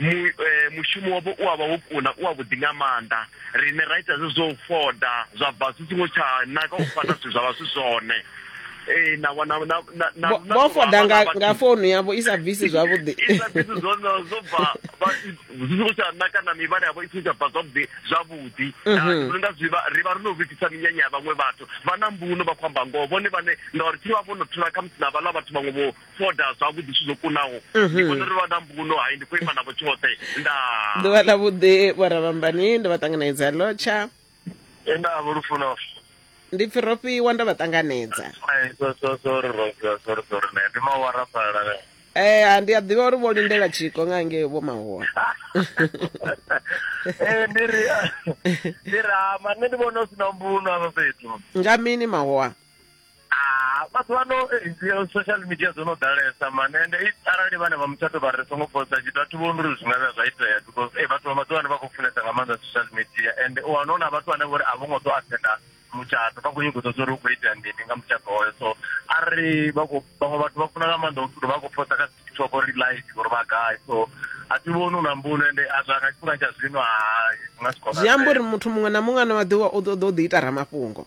mu, eh, mushumo wavho u avha wo kuna u avhuḓi nga maanḓa rine ra ita zwezwo u foda zwa bva zwi songo tsha naka u fana zwithu zwa vha zwi zwone ee na wana na na na Vho- na- vho foda nga vha- nga founu yavho i sa bvisi zwavhuḓi isa zwithu zwone zwo bva vha- zwi songo tsha naka na mivhala yavho i songo tsha bva zwavhuḓi zwavhuḓi Ah, ndi vhona unga zwi vha- ri vha ri no vhifhisa minyanya ya vhaṅwe vhathu vha na mbuno vha khou amba ngoho vhone vhane ngauri thi vha vho no thula khamusi na vhaḽa vhathu vhaṅwe vho ṱoḓa zwavhuḓi zwithu zwo kunaho mhm. ndi vhona uri vha na mbuno hai ndi khou ima navho tshoṱhe nda ḓuvha ḽa vhuḓi vhoravhambani ndo vha ṱanganedza lotsha nda vho lufuno ndi pfi ro fhiwa ndo vha ṱanganedza ndi mawara fhala Eh ndi a ḓivha uri vho lindela tshiko nga nge vho mahoa. Eh ndi ri ndi ra ma nṋe ndi vhona u sina mbuno afha fhethu. Nga mini mahoa? Ah, maḓuvha ano eh, social media dzo no ḓalesa mani ende eh, arali vhane vha mutshato vha ri songo posta tshithu a thi vhoni uri zwi nga vhuya zwa itea because eh, vhathu vha maḓuvha ano vha khou funesa nga maanḓa social media ende u wana hu na vhathu vhane vhori a vho ngo ḓo athenda mutshato vha khou nyingo ḓodzo uri hu khou itea mini nga mutshato hoyo so a ri vhaṅwe vhathu vha funa nga maanḓa uri vha khou posta kha tiktok uri live uri vha gai so a thi vhoni u na mbuno ende a zwa nga tshifhinga tsha zwino hai zwi nga si kona zwi amba uri muthu muṅwe na muṅwe ano maḓuvha u ḓo ḓo ḓi ita ramafhungo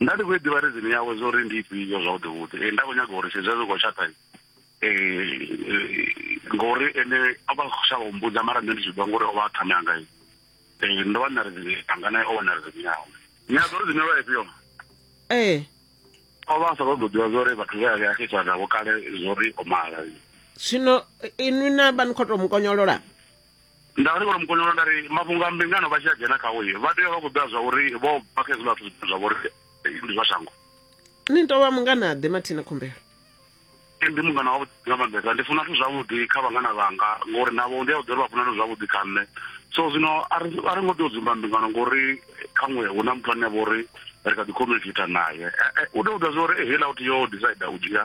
nda ndi khou i ḓivha rizini yawe zwo ri ndi ifhio zwavhuḓi vhuḓi um nda khou nyaga uri zwezwi zwi khou tshaṱa um ngori ene a vha khou shavha u mbudza mara nṋe ndi tshi ḓivha ngori o vha a ṱhame anga um ndo vha nṋa rizini anga naye o vha na rizini yawe ni a ḓo rizini yo vha ifhio ee o vha a sa ṱoḓo ḓivha zwa uri vhathu vhe a vhe a khethiwa navho kale zwo ri o mala zwino inwi na vha ni khou tou mukonyolola Nda ri vho Ramukonyolo nda ri mafhungo a mbingano vha tshi a dzhena khawo vha tea vha khou ḓivha zwa uri vho bva kha hezwiḽa zwithu zwine zwa vha uri ndi zwa shango. Ni tou vha mungana ḓe mathina khumbelo. Ndi mungana wa vhuḓi nga maanḓesa ndi funa zwithu zwavhuḓi kha vhangana vhanga ngori navho ndi a vhuḓi uri vha funa zwithu zwavhuḓi kha nṋe so zwino a ri a ri ngo tea u dzumba mbingano ngori khaṅwe hu na muthu ane a vha uri ri kha ḓi communicate naye u tea u ḓivha zwa uri heiḽa u tea u decide u dzhia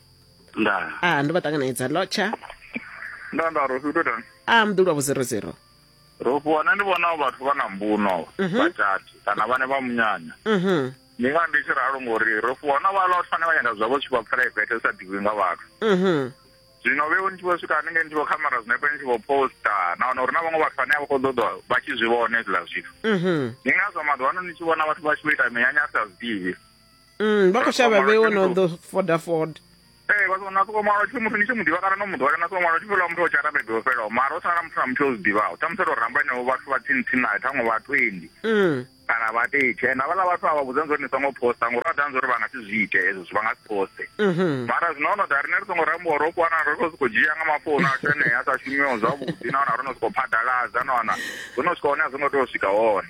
nda a ah, ndo vha ṱanganedza lotsha nda nda ro fhito tani a ah, mḓulwa vho zero zero ro fhiwa nṋe ndi vhona vhathu vha na mbuno mhm. vhatati kana vhane vha munyanya mhm. ndi nga ndi tshi ralo ngori ro fhiwa na vhala vhathu vhane vha nyanga zwavho tshi vha private sa ḓivhi nga vhathu mhm. zwino vhe ni tshi vho swika haningei ni tshi vho khamera zwinepe ni tshi vho posta nahone uri na vhaṅwe vhathu vhane a vha khou ḓoḓo vha tshi zwi vhona hezwiḽa zwithu ndi ngazwo maḓuvha ano ni tshi vhona vhathu vha tshi vho ita minyanya a sa zwiḓivhi Mm, vha khou shavha vhe wo no ḓo foda foda ee vha sona soko ṅwala tshipfi muthu ni tshi mu ḓivha kana no mu ḓowela na soko ṅwala tshipfi ḽa muthu o tsha rabebe o fhelaho mara o sala muthu na muthu o zwi ḓivhaho ṱhamusi ro ramba henevho vhathu vha tsini-tsini nayo ṱhaṅwe vha twenty mm. kana vha tetshe and havhaḽa vhathu a vha vhudzani zwa uri ni songo posta ngori vha ḓani zwa uri vha nga si zwi ite hezwo zwi vha nga si poste mhm. mara zwino ho no ḓa rine ri songo rambiwa ro fhiwa na ro no sokou dzhia nga mafounu ashu enea a sa shumiho zwavhuḓi nahone ro no sokou phaḓaladza na wana zwo no swika hone a zwo ngo tea u swika hone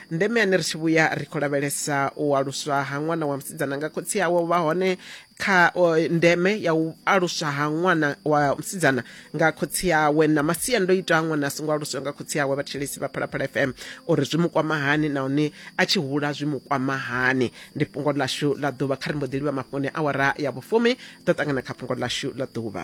ndeme yane ri tshi vhuya ri khou lavhelesa u aluswa ha ṅwana wa musidzana nga khotsi awe u vha hone kha o, ndeme ya u aluswa ha ṅwana wa musidzana nga khotsi awe na masiandoitwa a ṅwana a songo aluswa nga khotsi awe vhathetshelesi vha phalaphala fm uri zwi mu kwama hani nahone a tshi hula zwi mu kwama hani ndi fhungo ḽashu ḽa ḓuvha kha ri mbo ḓi livha mafhoni awara ya vhufumi ḓo ṱangana kha fhungo ḽashu ḽa ḓuvha